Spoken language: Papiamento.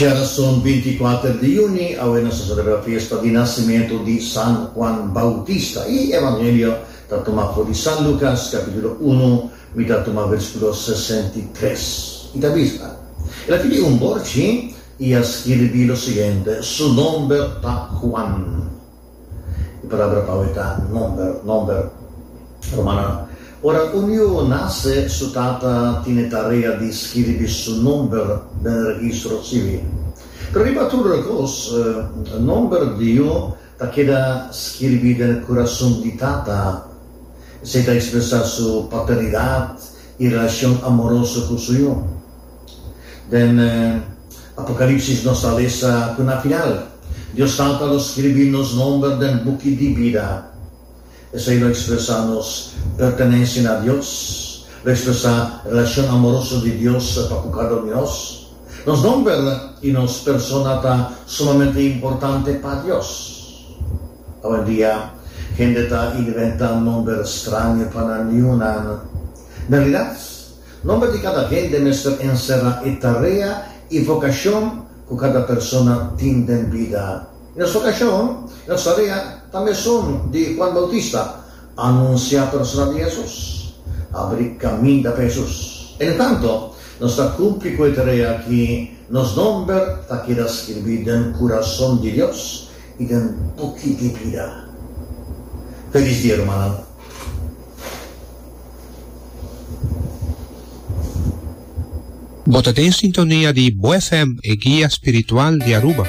Djerason binti i kuater di yuni, awe nos ta celebra fiesta di nasimentu di San Juan Bautista. E Evangelio ta tuma for di San Lucas, capitulo unu, mi ta tuma versículo sesenta i tres. I ta bisa, El a tene un borchi i a skirbi lo siguiente, Su nomber ta Juan. E palabra pau e ta nòmber, nomber. Rumannan, Ora un yuo nase, su tata tine tarea di skiribi su nòmber den registro sivil. Pero riba tur e kos, nòmber di yuo ta keda skiribi den kurason di tata. Esei ta ekspresá su paternidat i relashon amoroso ku su yuo. Den Apocalipsis nos ta lesa cu na final Dios tal pa lo scribi nos nomber den buki di bida. Esey lo expresa nos pertenencia na Dios, lo expresa relacion amoroso di Dios pa cu cada un di nos. Nos nomber y nos persona ta sumamente importante pa Dios. Awendia hende ta inventa nomber straño pa nan niñunan. Realidad? Nomber di cada hende mester encerra e tarea y vocacion cu cada persona tin den bida. Nos vocacion, nos tarea, ta mesun di Juan Bautista, anuncia persona di Jesus, abri caminda pa Jesus. Entretanto, nos ta cumpli cu e tarea aki, nos nomber ta keda skirbi den curason di Dios y den buki di bida. Felis dia, rumannan! Bo ta den sintonia di Bo FM, e guia spiritual di Aruba.